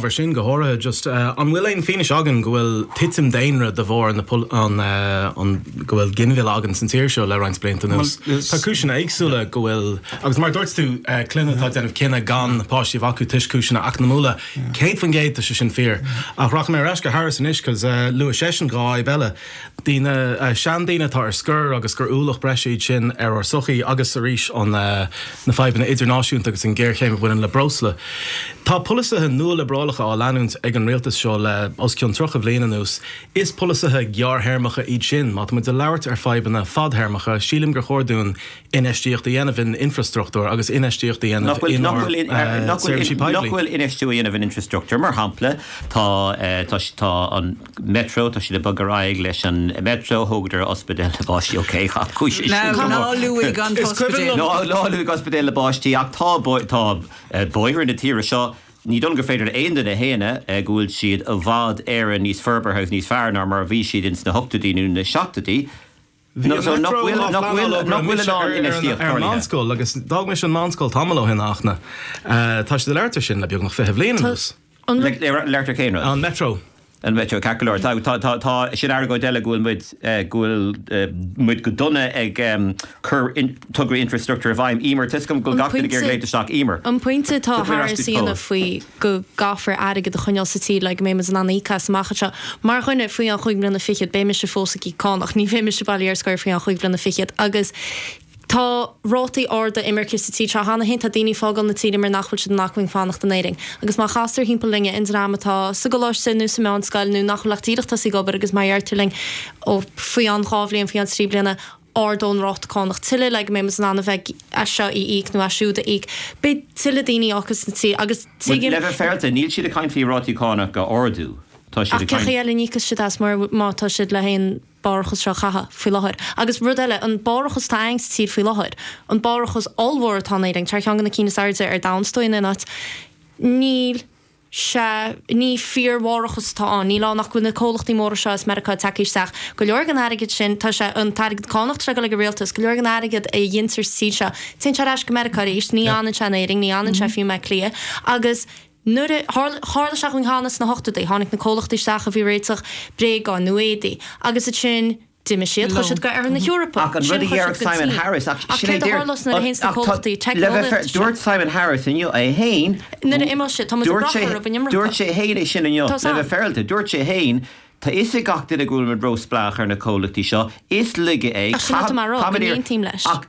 Mar sin, go háirithe, just, an bhfuil aon fianaise againn go bhfuil titim daonra de bharr an go bhfuil ginmhilleadh againn sa tír seo le roinnt blianta anuas? Tá cúiseanna éagsúla go bhfuil agus mar a dúirt tú, clainne atá ag déanamh cinneadh gan páistí a bheith acu toisc cúiseanna eacnamúla, céad faoin gcéad tá sé sin fíor. Ach rachaidh mé ar ais go Harris anois 'cause luaigh seisean dhá fhadhb eile. daoine, seandaoine atá ar scor agus gur ualach breise iad sin ar ár sochaí agus, arís, na fadhbanna idirnáisiúnta agus an ghéarchéim a bhaineann le breosla. Tá polasaithe nualiobrálacha á leanúint ag an rialtas seo le os cionn 30 bliain anuas. Is polasaithe gearrthéarmacha iad sin. Má táimid ag labhairt ar fadhbanna fadthéarmacha, sílim gur chóir dúinn infheistíocht a dhéanamh in infreastruchtúr agus infheistíocht a dhéanamh inár seirbhísí poiblí. Nach bhfuil infheistiú á dhéanamh in infreastruchtúr, mar shampla, tá an. Metro, tá siad ag bogadh ar aghaidh leis an Metro, thógadar ospidéal na bpáistí, ok, chaith cúis é sin go mór. Ná luaigh an t-ospidéal. Ná luaigh ospidéal na bpáistí ach tá bóithre na tíre seo, ní dóigh liom gur féidir le aon duine a shéanadh go bhfuil siad i bhfad Éireann níos forbartha agus níos fearr ná mar a bhí siad ins na hochtóidí nó na seachtóidí. Bhí an eachtra um Lá Flannán á bhí mise ar an meánscoil agus d'fhág mise an meánscoil tamall ó shin ach tá siad ag labhairt air sin le beagnach fiche bliain anuas. An Metro. An Metro, ceart go leor. Sin argóint eile go bhfuil muid, go bhfuil muid go dona ag cur tograí infrastruchtúir i bhfeidhm. Emer, tuigim go bhfuil gach duine ag iarraidh léimt isteach. Emer. An pointe atá thar a suíonna faoi. go gcaithfear airgead a choinneáil sa tír le go mbeidh muid in ann íoc as amach anseo. Mar dhuine faoi cheann chúig bhliana fichead, beidh mise fós ag íoc cánach, ní bheidh mise bailithe ar scor faoi cheann chúig bhliana fichead. Agus tá rátaí arda imirce sa tír seo cheana féin, tá daoine ag fágáil na tíre mar nach bhfuil siad in acmhainn fanacht in Éirinn. Agus má chastar timpeall linn an dream atá sa gcoláiste nó sa mheánscoil nó nach bhfuil ach díreach tosaithe ag obair agus má deirtear linn, ó, faoi cheann dhá bhliain, faoi cheann trí bliana, ardófar an ráta cánach tuilleadh le go mbeidh muid in ann a bheith as seo a íoc nó as siúd a íoc. Beidh tuilleadh daoine ag fágáil na tíre agus tuigim. Le bheith féaráilte, níl siad ag caint faoi rátaí cánach a ardú, tá siad ag caint. Ach cé chaoi eile a n-íocfas siad as mar má tá siad leis an mbarrachas seo a chaitheamh faoi láthair? Agus rud eile, an barrachas atá againn sa tír faoi láthair, an barrachas ollmhór atá in Éirinn, tá ar cheann de na cinn is airde ar domhan is dóigh in aon áit, níl. Sea, ní fíorbharrachas atá ann. Níl ann ach go bhfuil na comhlachtaí móra seo as Meiriceá ag teacht isteach. Go leor den airgead sin, tá sé, an t-airgead cánach atá ag dul ag an rialtas, go leor den airgead a dheintear sa tír seo, téann sé ar ais go Meiriceá arís. Ní fhanann sé in Éirinn, ní fhanann sé fiú i mBleá Cliath. Agus nuair a, tharla, tharla sé dhúinn cheana sna hochtóidí, tháinig na comhlachtaí isteach a bhí ag réiteach bréagáin nó éadaí agus ansin, D'imigh siad, chuaigh siad go hOirthear na hEorpa, Ach an rud a dhéarfadh Simon Harris, ach sin é a dúirt, le bheith fair, dúirt Simon Harris inniu é féin, nuair a d'imigh siad, tá muid ag brath orthu an iomarca, dúirt sé féin é sin inniu, le bheith féaráilte dó, dúirt sé féin, tá 'fhios ag gach duine go bhfuil muid róspleách ar na comhlachtaí seo, is laige é, tá muid ar, ach.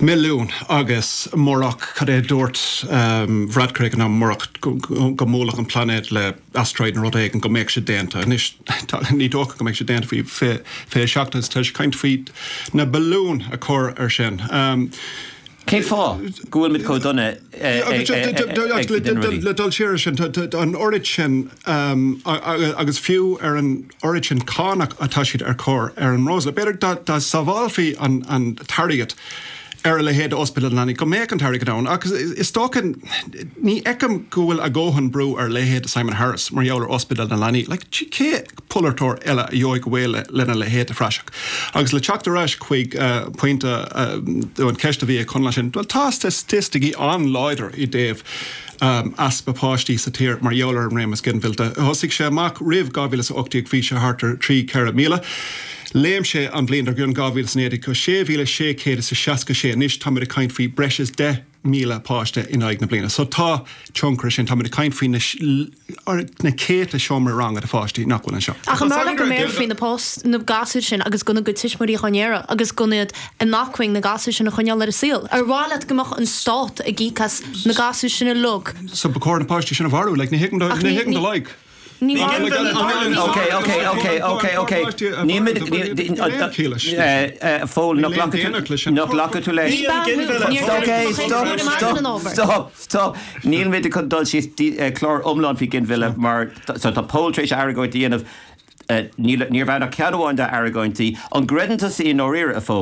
milliún agus murach cad é a dúirt Varadkar nó murach go mbuailfeadh an plainéad le asteroid nó rud éigin go mbeadh sé déanta anois ní dócha go mbeidh sé déanta faoi fiche seacht is tá sé ag caint faoi na billiúin a chur ar sin. Cén fáth go bhfuil muid chomh dona ag dul siar ar sin, an oiread sin agus fiú ar an oiread sin cánach atá siad a chur ar an mbreosla. B'fhéidir dá sábhálfaí an t-airgead ar a leithéid d'Ospidéal na Leanaí go mbeadh an t-airgead ann ach is dócha. Ní fheicim go bhfuil a dhóthain brú ar a leithéid de Simon Harris mar gheall ar Ospidéal na Leanaí. Like, cén polaiteoir eile a gheobhadh ar shiúl lena leithéid de phraiseach? Agus le teacht ar ais chuig pointe an cheist a bhí ag Conall ansin, bhuel tá staitisticí an-láidir i dtaobh. easpa páistí sa tír mar gheall ar an réimeas ginmhillte. Thosaigh sé amach roimh 2018 bhí sé thart ar thrí, ceithre míle. Léim sé an bhliain dar gcionn, 2019, go sé mhíle sé chéad is a seasca sé. Anois táimid ag caint faoi breis is deich míle páiste in aghaidh na bliana. So tá tionchar ar sin. Táimid ag caint faoi na céadta seomraí ranga de pháistí nach bhfuil anseo. Ach ar mhaith leat go mbéarfaí na gasúir sin agus gan a gcuid tuismitheoirí á n-iarraidh agus gan iad An maith chuig na gasúir sin a choinneáil ar an saol? Ar mhaith leat go mbeadh an Stát ag íoc as na gasúir sin uilig? So ba chóir na páistí sin a mharú, like, ní thuigim do, ní thuigim do like. Ní maith liom an Aird seo. Ok, ok, ok, ok, ok. Nílimid, níl, a Phóil, ná glacfaidh tú leis. Ok, stop, stop, stop, stop. Nílimid chun dul síos clár iomlán faoi ghinmhilleadh mar so tá Pól tar éis argóint a dhéanamh, ní raibh ann ach ceann amháin dá argóintí. An gcreideann tusa i ndáiríre, a Phóil?